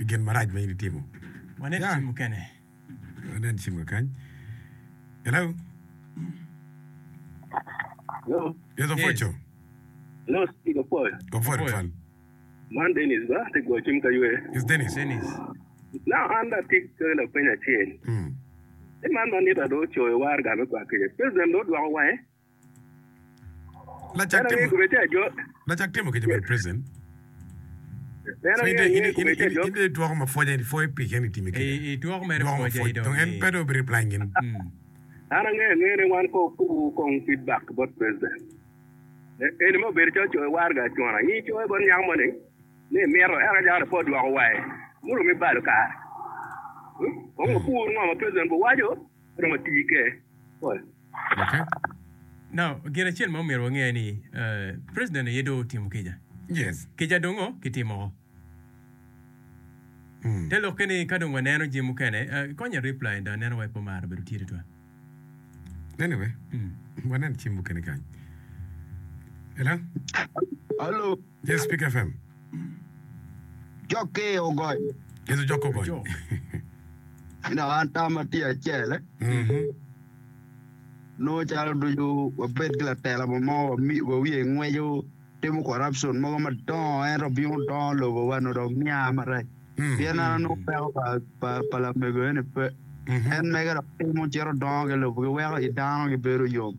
i gin marac ma in itimo. Wanen cing mukene. Wanen cing kakany. Hello? Hello? Yes, Ofweco. Hello, Steve Ofwoyo. Ofwoyo, Ofwoyo. Man Dennis ba, te gwo cim ka ywe. Yes, Dennis. Dennis. Na an da tik ke la penya cel. Mm. E man man nita do coyo war ga me kwa kece. President do dwako wange. Lacak timo lacak timo kica bene president. In de itwoko ma pwoja ni pwoyo pi keni itime kica. Itwoko mere pwoja i dong en pe do bi reply gin. An angeyo angeya ni wan ko kubu kong feedback bot president. Eni ma obedo calo coyo warga acona. In coyo bot nyako mo ni ni imito eka jara po dwoko waye. Muromo ibalo kare. Kong wapur ngo ma president owaco. Gin acel ma myero wange ni president aye dong otimo kica. Kica dong kitimo woko. Te lokke ni ka dong waneno jami mukene, konya reply in dong aneno wai pe omara bedo tye tutwal. Anyway, wanen jami mukene kany. Hello. Yes Pick FM. Jokke ogony. Yes ojokke ogony. Dok an tama tye acel. Nongo calo ducu wabed ki latela mo mo wa wiye ngweco timo corruption mogo madongo ento bino dongo lobo wa no dok nya marac. Pien an anongo peko pa pa pa lamego eni pe. En mege dok timo cito dongo ki lobo ki weko i dano gibedo yom.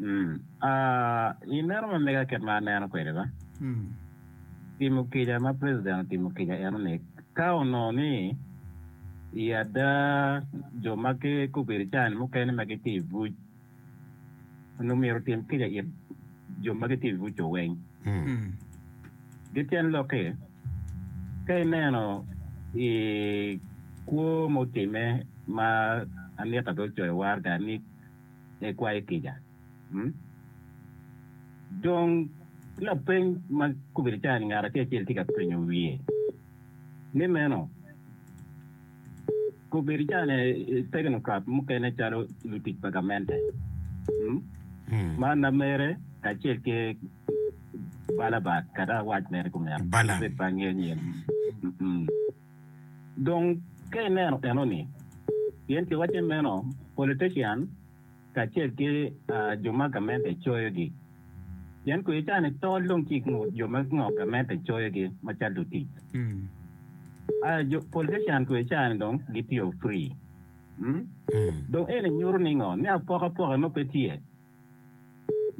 Mm. Ah, i meno ma mega kit ma aneno kwede ba, Mm. timo kica ma president otimo kica eno ni ka onongo ni i ada jo ma ki kobedo can mukene ma gitye i buc onongo myero otim kica it jo ma gitye i buc-co weng. Mm. Mm. Ki tyen lokke, ka ineno i kwo ma otime ma Anita bene ocoyo warga ni me kwayo kica. Dong, lapeny ma kobedo calo ni ngat acel acel tye ka penyo wiye ni meno, kobedo calo ni teknokrat mukene calo lutic pa gamente ma lamere kacel ki Balabas kadi awac mere kumeno, obed bangi anyim. Dong ka ineno enoni, pien kiwacce meno, politician kacel ki jo ma gamente coyogi, pien kwe cani tol dong tye i ngut jo ma ngo gamente coyogi macalo lutic. Aya jo politician kwe cani dong gitiyo free. Dong eni nyuto ni ngo? Ni apokapoke mo pe tye.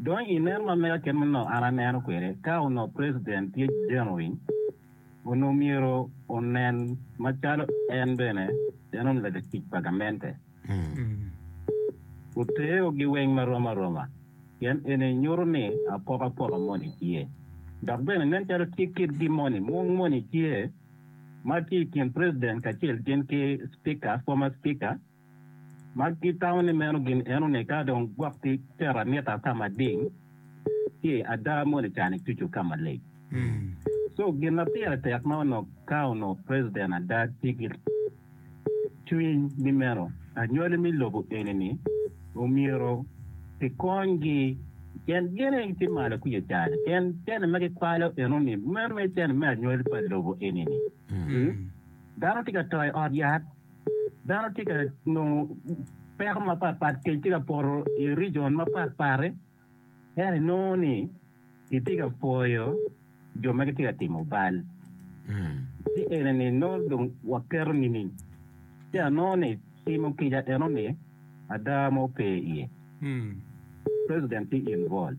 Dong i nen ma mega kit ma onongo an aneno kwede, ka onongo president tye jenuin, onongo myero onen macalo en bene en onongo latic pa gamente. Wuteo giweng ma rom aroma, pien eni nyuto ni apokapoka moni tye. Dok bene nen calo tye kitgi moni, mung moni tye ma tye i kin president kacel gin ki speaker, former speaker, ma gitamo ni meno gin enoni ka dong gwokgi tero anita ka mading ki ada moni cani tucu ka malic. So gin ma pire tek ma onongo ka onongo president ada tye ki cwiny ni meno anywali me lobo enini omyero kikonygi pien gin aye gitye malo kwija i cani pien cene ma gikwalo enoni meno aye cene me anywali pa lobo enini. Dano tye ka to i ot yat. Dano tye ka nongo peko mapat pat kec tye ka poto i region mapat pat ento inongo ni kitye ka pwoyo jo ma gitye ka timo bal ci eni ni nongo dong waketo nining ci anongo ni timo kica eno ni ada mo pe iye president tye involved.